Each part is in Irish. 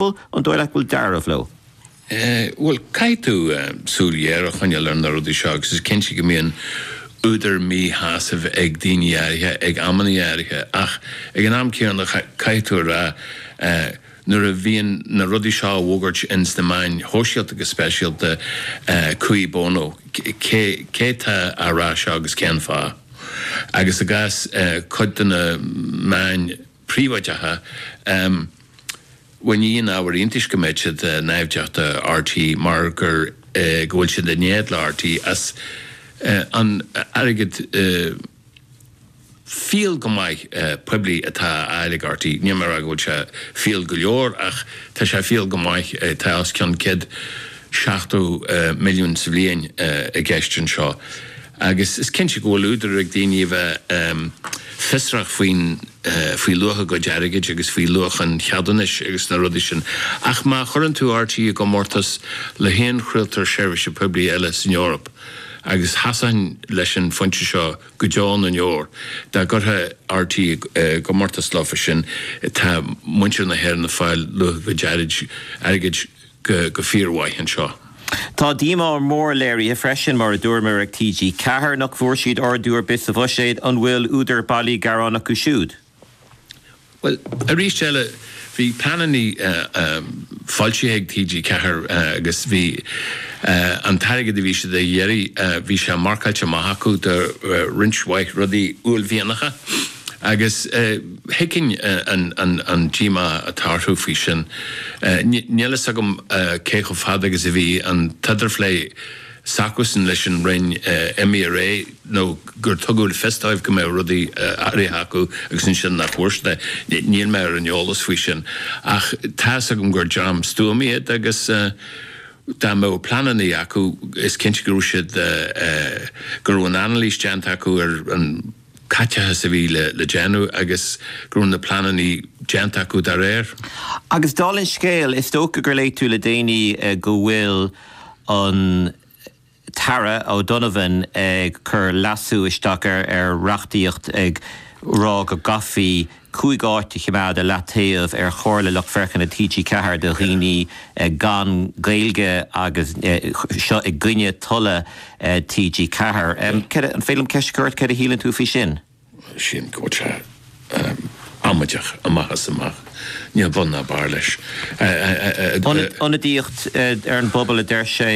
Bhuel, an dóigh leat go bhfuil dealramh leo? Bhuel, caithfidh tú súil ghéar a choinneáil ar na rudaí seo agus is cinnte go mbíonn údar míshásaimh ag daoine áirithe ag amanna áirithe ach ag an am céanna caithfidh tú a rá nuair a bhíonn na rudaí seo á bhfógairt ins na meáin shóisialta go speisialta cui bono? Cé tá á rá seo agus cén fáth? Agus i gcás cuid de na meáin príobháideacha. ní haon ábhar iontais go mbeadh siad naimhdeach do RTÉ mar gur go bhfuil siad in éad le RTÉ as an airgead fial go maith poiblí atá á fháil ag RTÉ. Níl mé ag rá go bhfuil sé fial go leor ach tá sé fial go maith, tá os cionn 170 milliún sa bhliain i gceist anseo. agus is cinnte go bhfuil údar ag daoine a bheith fiosrach faoi, faoi luach a gcuid airgid agus faoi luach an cheadúnais agus na rudaí sin ach má chuireann tú RTÉ i gcomórtas le haon chraoltóir seirbhíse poiblí eile san Eoraip agus sheasfainn leis an phointe seo go deo na ndeor dá gcuirfeá RTÉ i gcomórtas leo freisin tá muintir na hÉireann ag fáil luach a gcuid airgid go fíormhaith anseo. Tá díomá mhór léirithe freisin, mar a dúramar, ag TG4 nach bhfuair siad ardú ar bith sa bhuiséad. An bhfuil údar bailí gearáin acu siúd? Bhuel, arís eile, bhí pleananna foilsithe ag TG4 agus bhí an t-airgead a bhí siad a iarraidh, bhí sé marcáilte amach acu do roinnt mhaith rudaí uaillmhianacha agus, thuigfinn an díomá atá orthu faoi sin. Níl a fhios agam cé chomh fada agus a bhí an t-idirphlé s'acusan leis an Roinn roimh ré nó gur tugadh le fios dóibh go mbeadh rudaí áirithe acu agus ansin nach bhfuair siad é. Níl mé ar an eolas faoi sin ach tá a fhios agam gur dream stuama iad agus dá mbeadh pleananna acu is cinnte go raibh siad, go raibh an anailís déanta acu ar an. caiteachas a bhí le déanamh agus go raibh na pleananna déanta acu dá réir. Agus dála an scéil, is dócha gur léigh tú le déanaí go bhfuil an tAire O'Donovan ag cur leasú isteach ar reachtaíocht ag rá go gcaithfí 5 áit a choimeád i leataobh ar Chomhairle Lucht Féachana TG4 do dhaoine gan Gaeilge agus seo i gcoinne tola TG4. An féidir liom ceist a chur ort? Céard a shíleann tú faoi sin? Sílim go bhfuil sé amaideach amach is amach. Níl bun ná barr leis. Ionadaíocht ar an bpobal a deir sé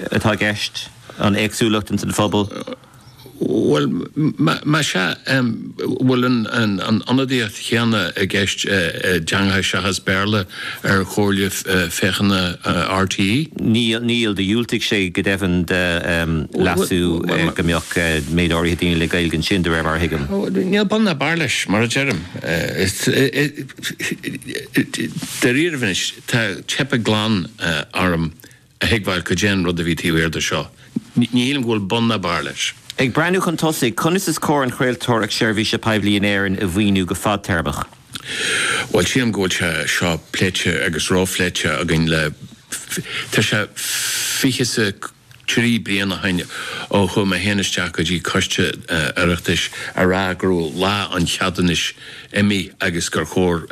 atá i gceist, an éagsúlacht ins an phobal. Bhuel, más ea, an bhfuil an ionadaíocht chéanna i gceist i dteangacha seachas Béarla ar Chomhairle Féachana RTÉ? Níl, níl. Diúltaíodh go deimhin do leasú go mbeadh méid áirithe daoine le Gaeilge ansin, de réir mar a thuigim. Níl bun ná barr leis, mar a deirim. Dáiríribh anois, tá teipthe glan orm. a thuigbheáil cad é an rud a bhí taobh thiar de seo. Ní shílim go bhfuil bun ná barr leis. Ag breathnú chun tosaigh, conas is cóir an chraoltóireacht seirbhíse poiblí in Éirinn a mhaoiniú go fadtéarmach? Bhuel, sílim go bhfuil sé seo pléite agus róphléite againn le tá sé fiche is a trí bliain ó shin ó chuaigh mé féin isteach go dtí coiste Oireachtais a rá go raibh lá an cheadúnais imithe agus gur chóir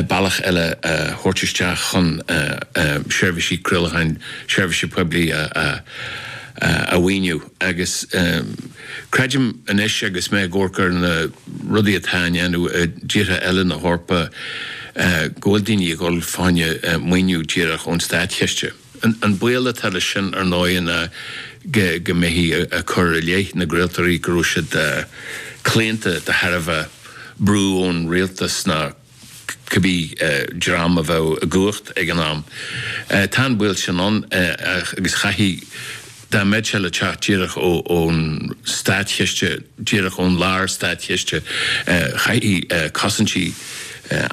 bealach eile a thabhairt isteach chun seirbhísí craolacháin seirbhíse poiblí a mhaoiniú agus creidim anois agus mé ag amharc ar na rudaí atá á ndéanamh i dtíortha eile na hEorpa go bhfuil daoine ag dul fá choinne maoiniú díreach ón státchiste. An baol atá leis sin, ar ndóigh, ná go mbeifí ag cur i leith na gcraoltóirí go raibh siad claonta de thairbhe brú ón rialtas nó cibé dream a bheadh i gcumhacht ag an am. Tá an baol sin ann agus chaithfeadh, dá mbeadh sé le teacht díreach ón státchiste, díreach ón lár-státchiste, chaithfí cosaintí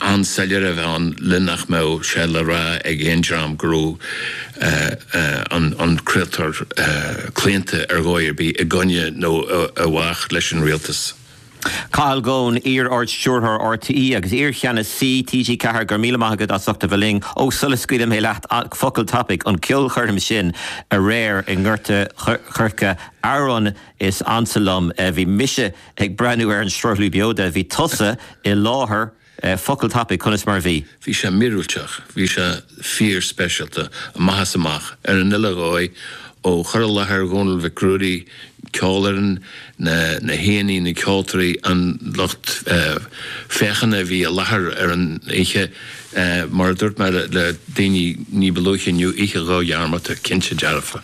an-soiléire a bheith ann le nach mbeadh sé le rá ag aon dream go raibh an craoltóir claonta ar dhóigh ar bith i gcoinne nó i bhfách leis an rialtas. Cathal Goan, iar-ardstiúrthóir RTÉ agus iarcheannasaí TG4 go raibh míle maith agat as ucht a bheith linn. Ó sula scaoilim leat focal tapaidh an ceolchoirm sin aréir i nGort a' Choirce Amhrán is Ansa Liom bhí mise ag breathnú ar an sruthlú beo de bhí tusa i láthair Focal tapaidh, conas mar a bhí? Bhí sé míorúilteach, bhí sé fíorspeisialta, amach is amach, ar an uile dhóigh, ó chur i láthair Dhónaill Mhic Ruairí, ceolfhoireann, na haíonna, na ceoltóirí, an lucht féachana a bhí i láthair ar an oíche. Mar a dúirt mé le daoine ní ba luaithe inniu, oíche dhodhearmadta, cinnte dearfa.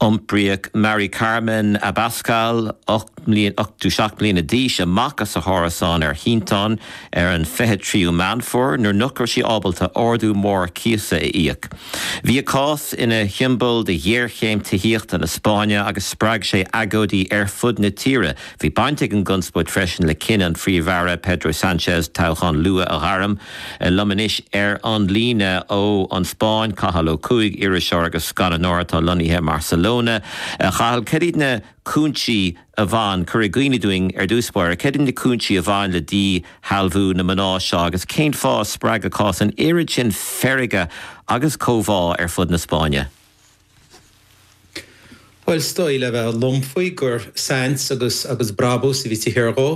Iompraíodh Mari Carmen Abascal, 87 mbliana d'aois, amach as a hárasán ar shínteán ar an 23ú Meán Fómhair nuair nach raibh sí ábalta ardú mór cíosa a íoc. Bhí a cás ina shiombail de ghéarchéim tithíochta na Spáinne agus spreag sé agóidí ar fud na tíre, Bhí baint ag an gconspóid freisin le cinneadh an Phríomh-Aire Pedro Sanchez toghchán luath a ghairm. Liom anois ar an líne ón Spáinn, Cathal Ó Cuaig, iriseoir agus scannánóir atá lonnaithe i mBarcelona. A Chathail, cad iad na cúinsí a bhain, cuir i gcuimhne dúinn ar dtús báire, cad iad na cúinsí a bhain le díshealbhú na mná seo agus cén fáth a spreag a cás an oiread sin feirge agus comhbhá ar fud na Spáinne? Bhuel, is dóigh le bheith lom faoi gur saint agus agus brabús a bhí taobh thiar dhó,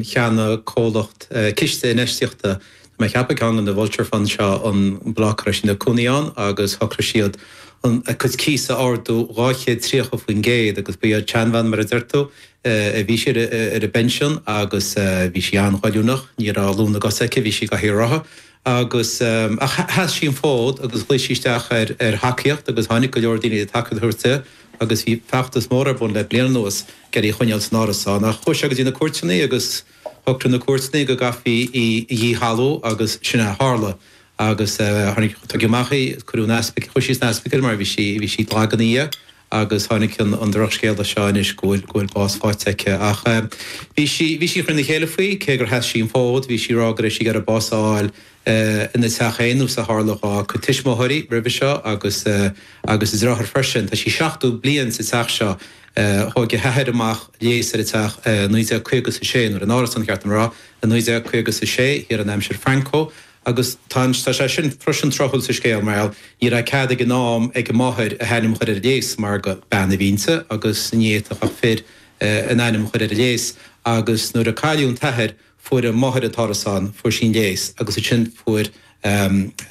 cheannaigh, comhlacht, ciste infheistíochta, tá mé a cheapadh ceann de na vulture funds seo, an bloc a raibh sí ina cónaí ann agus shocraigh siad an, a cuid cíos a ardú dhá chéad tríocha faoin gcéad agus ba í an tseanbhean mar a deir tú, eh, bhí sí ar a, ar a pinsean agus eh, bhí sí an-ghoilliúnach, ní raibh lúth na gcos aici, bhí sí i gcathaoir rotha. agus sheas sí an fód agus ghlaoigh sí isteach ar thacaíocht agus tháinig go leor daoine le tacaíocht a thabhairt di agus bhí feachtas mór ar bun le bliain anuas ag iarraidh í a choinneáil san árasán ach chuaigh sé go dtí na cúirteanna agus shocraigh na cúirteanna go gcaithfí í a dhíshealbhú agus sin a tharla agus tháinig, tugadh amach í, cuireadh an ospaic, chuaigh sí san ospaicil mar bhí sí, bhí sí lag ina dhiaidh. agus tháinig an drochscéala seo anois go bhfuil bás faighte aici ach bhí sí bhí sí an-chortha trína chéile faoi, cé gur sheas sí an fód, bhí sí ag rá go raibh sí ag iarraidh bás a fháil ina teach féin nós a tharla dhá tuismitheoirí roimhe seo agus agus a deartháir freisin. Tá sí 70 bliain sa teach seo, thóg a hathair amach léas ar an teach i 1950 is a sé, nó ar an árasán ba cheart dom a rá, i 1950 is a sé, thiar in aimsir Franco, Agus tá sé sin freisin tráthúil sa scéal mar gheall, ní raibh cead ag an am ag a máthair a hainm a chur ar an léas mar gur bean a bhí inti agus ní fhéadfadh ach fir a n-ainm a chur ar an léas agus nuair a cailleadh an t-athair fuair a máthair an t-árasán, fuair sí an léas agus ansin fuair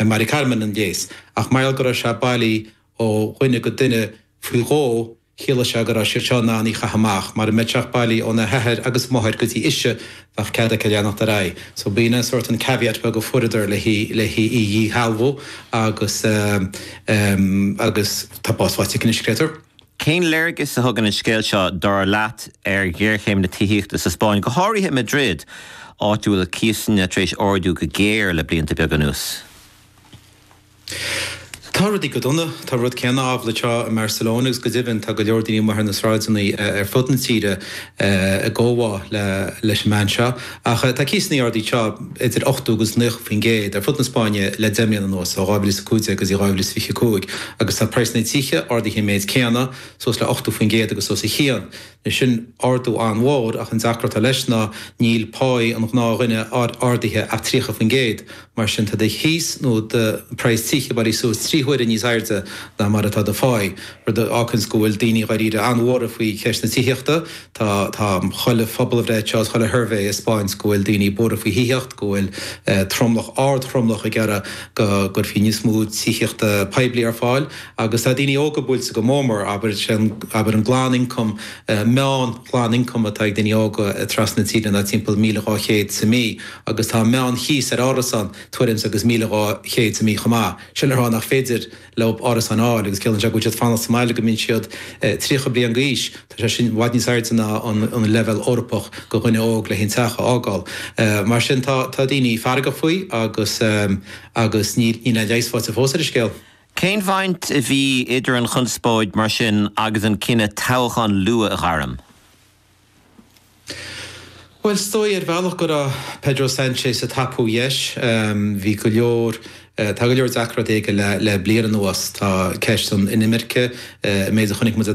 Mari Carmen an léas ach mar gheall go raibh sé bailí ó dhuine go duine faoi dhó, Chiallaigh sé go raibh siad seo in ann í a chaitheamh amach, mara mbeadh sé ach bailí óna hathair go máthair go dtí ise, bheadh cead aici leanacht ar aghaidh. So b'in an sórt an caveat beag a fuaireadar le hí le hí a dhíshealbhú agus ehm agus tá bás faighte aici anois, creidtear. Cén léargas a thugann an scéal seo, dar leat, ar ghéarchéim na tithíochta sa Spáinn, go háirithe i Madrid, áit a bhfuil cíosanna tar éis ardú go géar le blianta beaga anuas? Tá rudaí go dona, tá an rud céanna amhlaidh anseo i mBarcelona agus go deimhin tá go leor daoine amuigh ar na sráideanna ar fud na tíre i gcomhbhá leis an mbean seo ach tá cíosanna ardaithe anseo idir 80 agus 90% ar fud na Spáinne le deich mbliana anuas, ó 2015 go dtí 2025, agus tá praghsanna na dtithe ardaithe an méid céanna suas le 80% agus os a chionn. Sin ardú an-mhór ach an deacracht atá leis ná níl páí an ghnáthdhuine ardaithe ach 30%, mar sin tá do chíos nó do praghas tí ag éirí suas trí huaire níos airde ná mar atá do pháí, rud a fhágfaidh go bhfuil daoine dháiríre an-bhuartha faoi cheist na tithíochta. Tá chuile phobalbhreith seo is chuile shuirbhé ag 'speáint go bhfuil daoine buartha faoi thithíocht, go bhfuil tromlach ardtromlach ag iarraidh go gcuirfí níos mó tithíochta poiblí ar fáil. Agus tá daoine óga buailte go mór mór, abair, sé an, abair, an glanioncam, an meán-ghlanioncam atá ag daoine óga trasna na tíre ná timpeall míle dhá chéad sa mí agus tá an meán-chíos ar árasán tuairim's agus míle dhá chéad sa mí chomh maith. Sin le rá nach féidir leo árasáin a fháil agus ciallaíonn sé go bhfuil siad ag fanacht sa mbaile go mbeidh siad tríocha bliain d'aois. Tá sé sin i bhfad níos airde ná an leibhéal Eorpach go dhuine óg leis an teach a fhágáil. Mar sin tá daoine feargach faoi agus, agus níl aon leigheas faighte fós ar an scéal. Cén bhaint a bhí idir an chonspóid, mar sin, agus an cinneadh toghchán luath a ghairm? Bhuel, is dóigh ar bhealach go raibh Pedro Sanchez ag tapú deis. Bhí go leor, tá go leor deacrachtaí aige le bliain anuas. Tá ceist na hinimirce, an méid a chonaic muid le